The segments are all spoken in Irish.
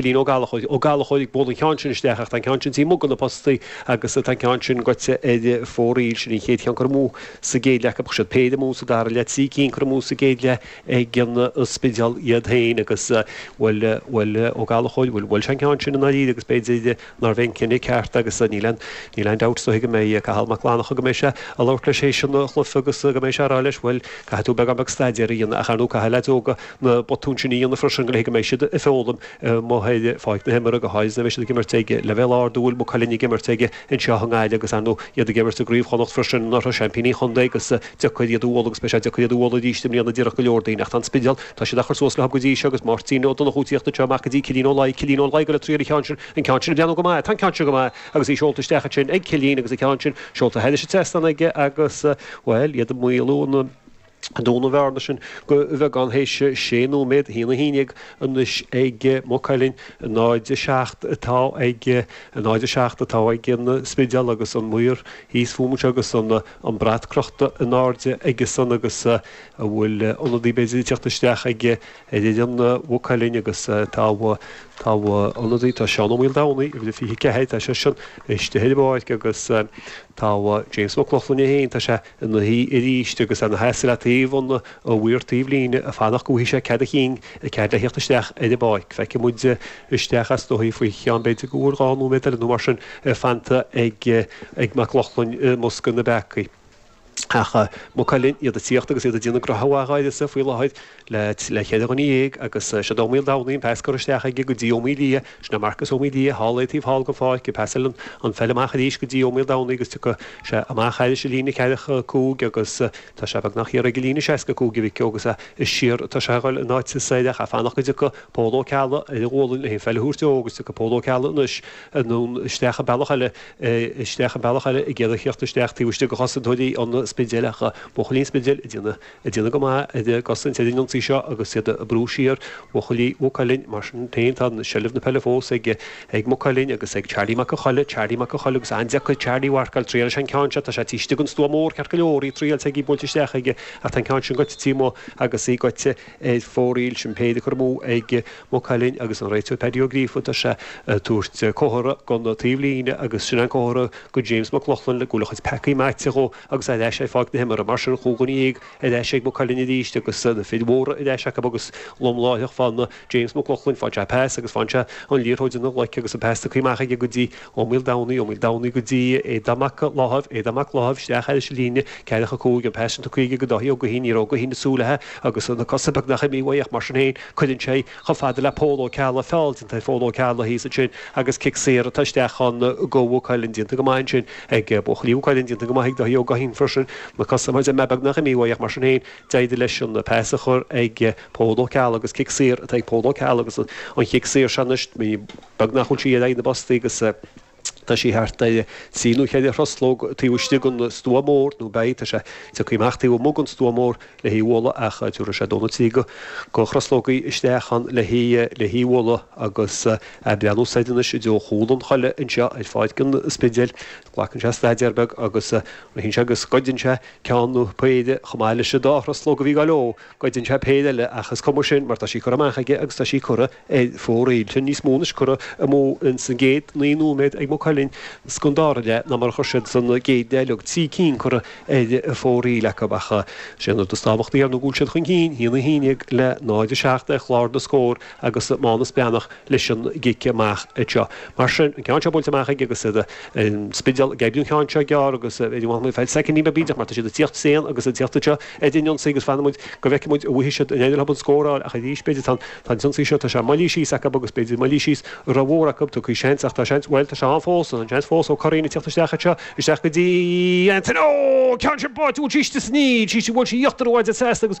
Cillín Ó Gallachóir. Ó Gallachóir ag bualadh an ceann sin isteach ach tá an ceann sin taobh amuigh de na postaí agus tá an ceann sin goite ar fóraoil. Sin an chéad cheann curtha amú sa gcéad leath acu. Chuir siad péire amú sa dara leath, trí cinn curtha amú sa gcéad leath ag an Spidéal iad féin agus bhuel Ó Gallachóir, bhuail sé an ceann sin i ndáiríre agus b'fhéidir, Nárbh é an cinneadh ceart agus níl aon, níl aon dabht faoi go mbeidh Cathal Mac Fhlannchadh go mbeidh sé a' labhairt leis théis an chluife agus go mbeidh sé a' rá leis bhuel caithfidh tú beagán beag staidéar a dhéanamh ach ar ndú caithfidh leaids óga na botúin sin a dhéanamh freisin go le haghaidh go mbeidh siad a' foghlaim amuigh ar pháirc na himeartha go háirid nuair a bheidh siad ag imirt ag leibhéal ard a bhfuil Maigh Cuilinn ag imirt ag anseo i nGaillimh agus ar ndú iad ag imirt i gCraobh Chonnacht freisin, ina seaimpíní an chontae agus. deacair iad a bhualadh agus beidh sé deacair iad a bhualadh arís i mbliana díreach go leor daoine ach tá an Spidéal, tá siad á chur suas leo go dtí seo agus Máirtín Ó Donnchú ag tíocht anseo amach go dtí Cillín Ó Laoi, Cillín Ó Laoi ag goil ag triail an ceann sin, an ceann sin ag breathnú go maith, tá an ceann sin go maith agus í seolta isteach ansin ag Cillín agus an ceann sin seolta thairis an trasnán aige agus, bhuel, iad ag maolú an, ag dúnadh an bhearna sin go bheagán théis sé nóiméad, haon a haon déag anois ag Maigh Cuilinn, 0, 7 atá ag, 0, 7 atá ag an Spidéal agus an maor thíos fúm anseo agus an. an brat crochta in airde aige-san agus an bhfuil ionadaí b'fhéidir ag tíocht isteach ag ag ag an Maigh Cuilinn agus tá tá ionadaí tá Seán Ó Maoldomhnaigh uimhir a 24 tá seisean istigh ar an bpáirc agus tá James Mac Lochlainn é féin tá sé ina shuí arís agus ina sheasamh le taobh an mhaoir taobh líne ag fanacht go bhfaighidh sé cead a chinn agus cead le theacht isteach ar an bpáirc. Feicfidh muid isteach is dóigh faoi cheann b'fhéidir go bhfuil dhá nóiméad eile nó mar sin fanta ag ag Mac Lochlainn i mbosca na bpeacaí. Ach Maigh Cuilinn iad ag tíocht agus iad ag déanamh go maith arís faoi láthair le le cheithre dhuine dhéag agus seod Ó Maoldomhnaigh an pas curtha isteach aige go dtí Ó Maoildhia. Sin é Marcus Ó Maoildhia thall ar an taobh thall den pháirc ag pasáil an pheil amach arís go dtí Ó Maoldomhnaigh agus tiocfaidh sé amach thairis an líne ceathracha cúig agus Tá sé beagnach ar an líne 65 aige agus é is siar atá sé ag dul in áit is é ag fanacht go dtiocfaidh Pól Ó Ceallaigh ar a ghualainn leis an pheil a thabhairt dó agus tiocfaidh Pól Ó Ceallaigh anois anonn isteach bealach eile isteach an bealach eile ag iarraidh theacht isteach taobh istigh de chosaint úd an Spidéil ach buachaillí an Spidéil ag déanamh ag déanamh go maith ag cosaint ar an ionsaí seo agus iad ag brú siar buachaillí Mhaigh Cuilinn mar sin féin tá seilbh na peile fós ag ag Maigh Cuilinn agus ag Charlie Mac an Choiligh, Charlie Mac an Choiligh agus an-deacair Charlie a mharcáil triailfidh sé an ceann seo, tá sé taobh istigh den stua mór ceart go leor, í triailte aige í buailte isteach aige ach tá an ceann sin goite taobh amuigh agus í goite ar fóraoil sin péire curtha amú ag Maigh Cuilinn agus an réiteoir Paddy Ó Gríofa tá sé ag tabhairt comhartha gon taobh líne agus sin an comhartha go James Mac Lochlainn go bhfuil a chuid peacaí maite dhó agus ar ais ar pháirc na himeartha mar sin cúig dhuine dhéag ar ais ag Maigh Cuilinn arís agus na fir mhóra ar ais acu agus lom láithreach faigheann James McLoughlin, faigheann sé an pas agus faigheann sé an liathróid ina ghlaic agus an pas tugtha amach aige go dtí Ó Maoil Domhnaigh, Ó Maoil Domhnaigh go dtí Aodán Mac Láimh, Aodán Mac Láimh isteach air leis an líne, 4-5, an pas sin tugtha aige go Dáithí Ó Guithín, ní raibh Ó Guithín ag súil leithe agus na cosa beagnach imithe uaidh ach mar sin féin cuireann sé chomh fada le Pól Ó Ceallaigh, feall déanta ar Phól Ó Ceallaigh thíos ansin agus cic saor atá isteach chun go Maigh Cuilinn déanta go maith ansin ag buachaillí Mhaigh Cuilinn déanta go maith ag Dáithí Ó Guithín freisin, na cosa mar is eile beagnach imithe uaidh ach mar sin féin. D'éirigh leis an pas a chur chuig Pól Ó Ceallaigh agus cic saor atá ag Pól Ó Ceallaigh agus an cic saor seo anois beagnach a bhfuil sí ar aghaidh na bpostaí agus tá sí thart ar trí nó cheithre thruslóg taobh istigh den stua mór nó beidh, tá sé tiocfaidh amach taobh amuigh den stua mór le hí a bhualadh ach tiúrfaidh sé dó nó trí de thruslógaí isteach ann le hí le hí a bhualadh agus é ag breathnú soir anois i dtreo chúl an halla anseo ar pháirc an Spidéil. Glacann sé staidéar beag agus ritheann sé agus goideann sé ceann nó péire chomh maith leis an dá thruslóg a bhí gá leo. Goideann sé péire eile ach is cuma sin mar tá sí curtha amach aige agus tá sí curtha ar fóraoil. Sin níos mó ná scór amú ins an gcéad naoi nóiméad ag Maigh Cuilinn san dara leath ná mar a chur siad san gcéad leath leag trí cinn curtha ar fóraoil acu ach sé an rud is tábhachtaí ar ndóigh go bhfuil siad chun cinn, 1-11 le 0-7 ar chlár na scór. agus Mánus Breathnach leis an gcic amach seo. Mar sin, an ceann seo buailte amach aige agus an Spidéal ag oibriú an ceann seo gearr agus b'fhéidir go bhfanfaimid feadh soicind nó beag bídeach mar tá siad ag tíocht tréan agus ag tíocht anseo ar an ionsaí agus fanfaimid go bhfeicfidh muid an bhfaighidh siad an féidir leo scóráil ach arís b'fhéidir tá an t-ionsaí seo tá sé moillithe síos acu agus b'fhéidir moillithe síos ró mhór acu tiocfaidh seans ach tá seans bhuel tá sé ann fós tá an seans fós Ó Curraoin ag tíocht isteach anseo isteach go dtí an ceann sin báite bhuail sí síos níl sí bhuail sí íochtar an mhaide seasta agus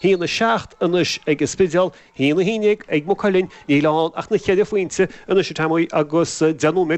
hAon a seacht anois ag an Spidéal, hAon a haon déag ag Maigh Cuilinn, níl ann ach na ceithre phointe anois, a Tommy, agus deich nóiméad.